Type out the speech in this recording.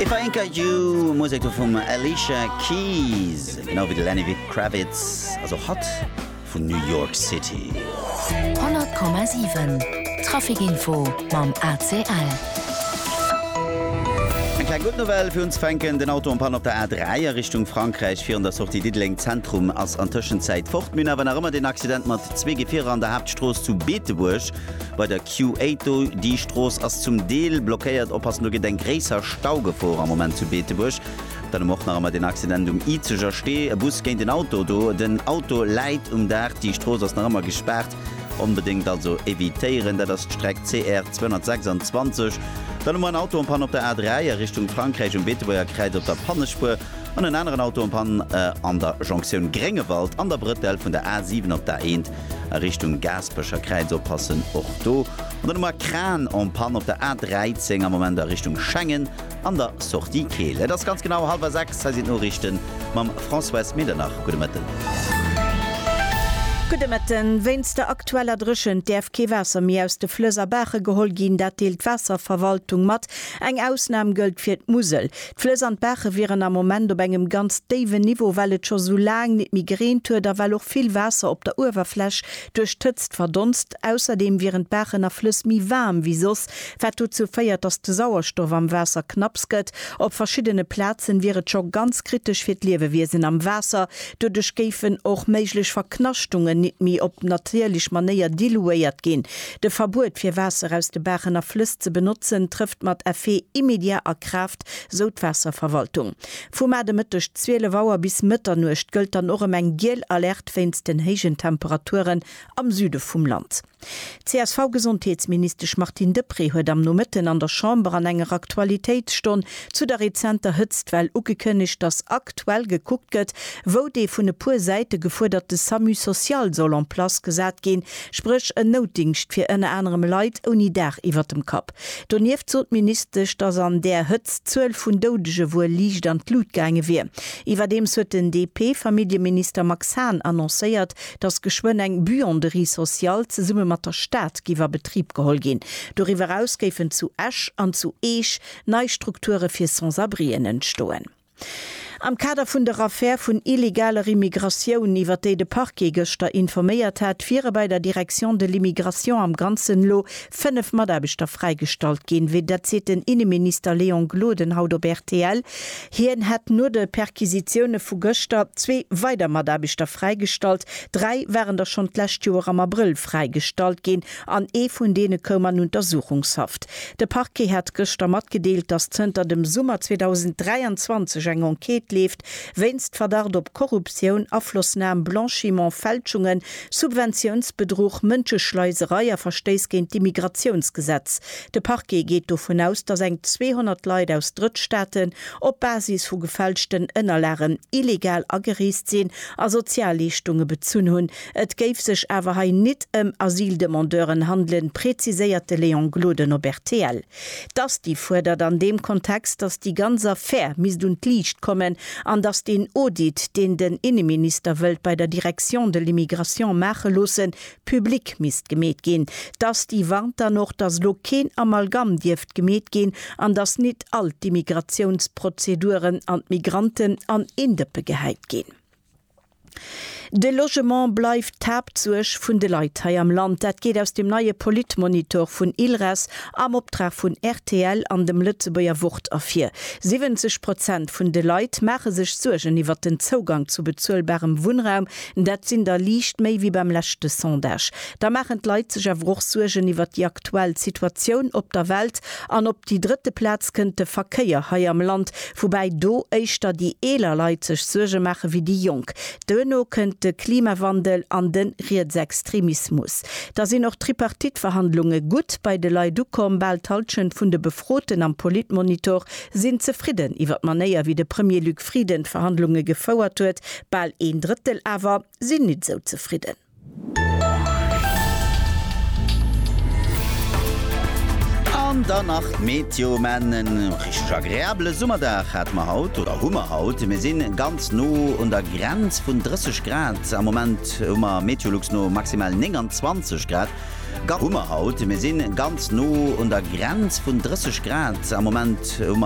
If I Ain't Got You, Musek do vum Alicia Keys, genau wéi de Lenny Kravitz, ass och hatt vun New York City. 100,7 Traficinfo mam ACL. Eng kleng gutt Nouvelle fir unzefänken, den Auto am Panne op der A3 a Richtung Frankräich virun der Sortie Diddeleng Zentrum ass an Tëschenzäit fort. Mir hunn awer nach ëmmer den Accident mat zwee Gefierer an der Haaptstrooss zu Beetebuerg. Bei der Q8 déi Strooss ass zum Deel blockéiert. Oppassen, do gëtt eng gréisser Staugefor am Moment zu Beetebuerg. Dann hu mer och nach emmer den Accident um Izeger Stee, e Bus géint en Auto. Do den Auto läit um Daach. Déi Strooss ass nach ëmmer gespaart. Onbedéngt also evitéieren. Dat ass d'Streck CR 226. Dann hu mer en Auto en Panne op der A3 a Richtung Frankräich um Beetebuerger Kräiz op der Pannespuer an en aneren Auto en Panne an der Jonktioun Gréngewald an der Brëttel vun der A7 op d'A1. a Richtung Gaaspecher Kräiz oppassen, och do an der Nummer Kran en Panne op der A13 am Moment a Richtung Schengen an der Sortie Keel. Et ass ganz genau hallwer 6, hei sinn d'Noriichte mam Françoise Medernach. Gudde Mëtten. Gudde Mëtten. Wéinst der aktueller Dréchent däerf kee Waasser méi aus de Flëss a Baache geholl ginn. Dat deelt d'Waasserverwaltung mat. Eng Ausnam gëllt fir d'Musel. D'Flëss an d'Baache wieren am Moment op engem ganz déiwen Niveau, well et scho sou laang nit méi gereent huet a well och vill Waasser op der Uewerfläch duerch d'Hëtzt verdonst. Ausserdeem wieren d'Baachen a Flëss méi waarm wéi soss, wat dozou féiert, datt de Sauerstoff am Waasser knapps gëtt. Op verschiddene Plazen wier et scho ganz kritesch fir d'Liewewiesen am Waasser. Doduerch géifen och méiglech Verknaschtungen nit méi op natierlech Manéier diluéiert ginn, De Verbuet fir Waasser aus de Baachen a Flëss ze benotzen trëfft mat Effet immédiat a Kraaft, sou d'Waasserverwaltung. Vu mar de Mëtteg 12 Auer bis Mëtternuecht gëllt dann och ëm eng giel Alerte wéinst den héijen Temperaturen am Süde vum Land. D'CSV-Gesondheetsministesch Martine Deprez huet am Nomëtten an der Chamber an enger Aktualitéitsstonn zu der rezenter Hëtztwell ugekënnegt, datt aktuell gekuckt gëtt, wou dee vun e puer Säite gefuerderte Samu social soll en place gesat ginn, spréch en Noutdingscht fir ënner anerem Leit ouni Daach iwwert dem Kapp. Donieft sot d'Ministesch, datt an där Hëtzt d'Zuel vun Doudege wuel liicht an d'Lut gaange wier. Iwwerdeems huet den DP-Familljeminister Max Hahn annoncéiert, datt geschwënn eng Buanderie sociale zesumme mat der Stad géif a Betrib geholl ginn. Doriwwer eraus géifen zu Esch an zu Eech nei Strukture fir Sans-abrien entstoen. Am Kader vun der Affär vun illegaler Immigratioun, iwwer déi de Parquet gëschter informéiert hat, wiere bei der Direction de l'immigration am Ganzen elo 5 Mataarbechter fräigestallt ginn. Wéi dat seet den Inneminister Léon Gloden haut op rtl. Hien hätt no de Perquisitioune vu gëschter zwee weider Mataarbechter fräigestallt. Dräi waren der schonn d'lescht Joer am Abrëll fräigestallt ginn. an ee vun deene koum an Untersuchungshaft. De Parquet hat gëschter matgedeelt, datt zënter dem Summer 2023 eng Enquête leeft wéinst Verdacht op Korruptioun, Aflossnam, Blanchiment, Fälschungen, Subventiounsbedruch, Mënscheschleiserei a Verstéiss géint d'Immigratiounsgesetz. De Parquet geet dovun aus, datt eng 200 Leit aus Drëttstaaten op Basis vu gefälschten Ënnerlagen illegal agereest sinn a Sozialleeschtunge bezunn hunn, Et géif sech awer hei nit ëm Asyldemandeuren handelen, präziséiert de Léon Gloden op rtl. D'ASTI fuerdert an deem Kontext, datt déi ganz Affär misst un d'Liicht kommen an datt deen Audit, deen den Inneminister wëllt bei der Direction de l'Immigration maache loossen, public misst gemeet ginn. D'ASTI warnt dann och, datt elo keen Amalgam dierft gemeet ginn an datt nit all d'Immigratiounsprozeduren an d'Migranten an een Dëppe gehäit ginn. De Logement bleift d'Haaptsuerg vun de Leit hei am Land. Dat geet aus dem neie Politmonitor vun ILRES am Optrag vun rtl an dem Lëtzebuerger Wort ervir. 70 Prozent vun de Leit maache sech Suergen iwwert den Zougang zu bezuelbarem Wunnraum. Dat sinn der liicht méi wéi beim leschte Sondage. Da maachen d'Leit sech awer och Suergen iwwert déi aktuell Situatioun op der Welt. An op déi drëtte Plaz kënnt de Verkéier hei am Land, woubäi do éischter déi eeler Leit sech Suerge maache wéi déi Jonk. Duerno kënnt de Klimawandel an de Rietsextremismus. Da sinn och d'Tripartite-Verhandlunge gutt bei de Leit ukomm, bal d'Hallschent vun de Befroten am Politmonitor sinn zefridden iwwer d'Manéier wéi de Premier Luc Frieden d'Verhandlunge gefouert huet, bal een Drëttel awer sinn nit esou zefridden. An dann nach d'Meteo, men en richteg agreabele Summerdag hate mer haut, oder hu mer haut. Mir sinn ganz no un der Grenz vun 30 Grad. Am Moment hu mer Meteolux no maximal 29 Grad. Ga hu mer haut. Mir sinn ganz no un der Grenz vun 30 Grad. Am Moment hu mer.